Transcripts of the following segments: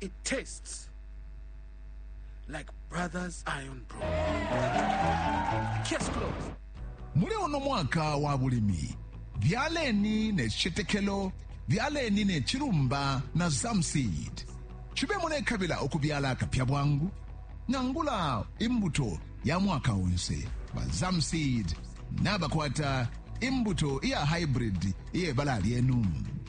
It tastes like Brothers Iron Pro. Case closed. muli uno mwaka wa bulimi byaleni ne citetekelo byaleni ne cilumba na zamseed cibe mulekabila ukubyala akapya bwangu nangula imbuto ya mwaka onse ba zamseed nabakwata imbuto iya hybrid iye bala lyenu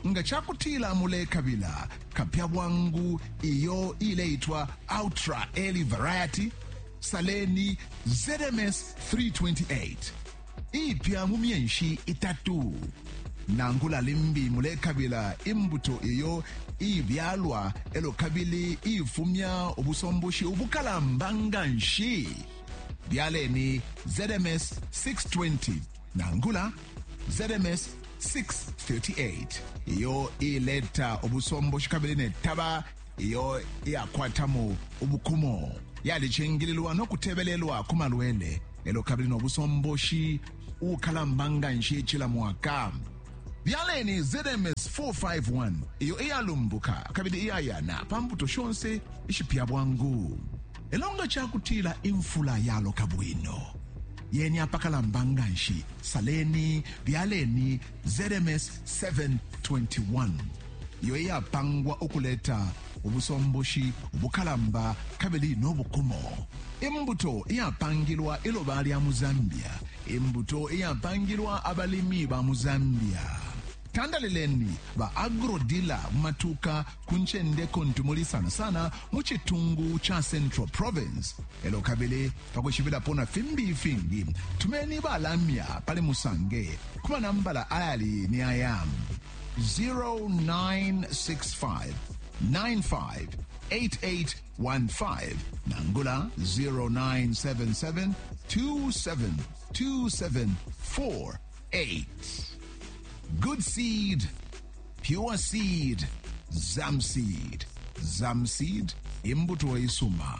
nga ca kutila mulekabila kapya bwangu iyo ileitwa ultra early variety saleni zms 328 iipya mu myenshi itatu. Nangula limbi mulekabila imbuto iyo iibyalwa elo kabili iifumya ubusomboshi ubukalamba nga nshi, byaleni ZMS 620 nangula ZMS 638 iyo iileta ubusomboshi kabili ne taba iyo iyakwatamo ubukumo yalicingililwa no kutebelelwa ku malwele elo kabili no busomboshi ukalamba nga nshi cila mwaka byaleni zms 451 iyo iyalumbuka kabili iyayana pa mbuto shonse ishipya bwangu elo nga cakutila imfula yaloka bwino yeni apakalamba nga nshi saleni byaleni ZMS 721, iyo iyapangwa ukuleta ubusomboshi ubukalamba kabili no bukumo, imbuto iyapangilwa iloba lya mu Zambia, imbuto iyapangilwa abalimi ba mu Zambia. Tandalileni ba agrodila mu matuka ku ncende kuntu muli sana sana mu citungu ca Central Province, elo kabili Pa kwishibilapo na fimbi ifingi, tumeni ba lamya pali Musange ku manambala ayali ni aya, 0965 958815 nangula 0977 272748. Good seed, pure seed, Zamseed. Zamseed, imbuto isuma.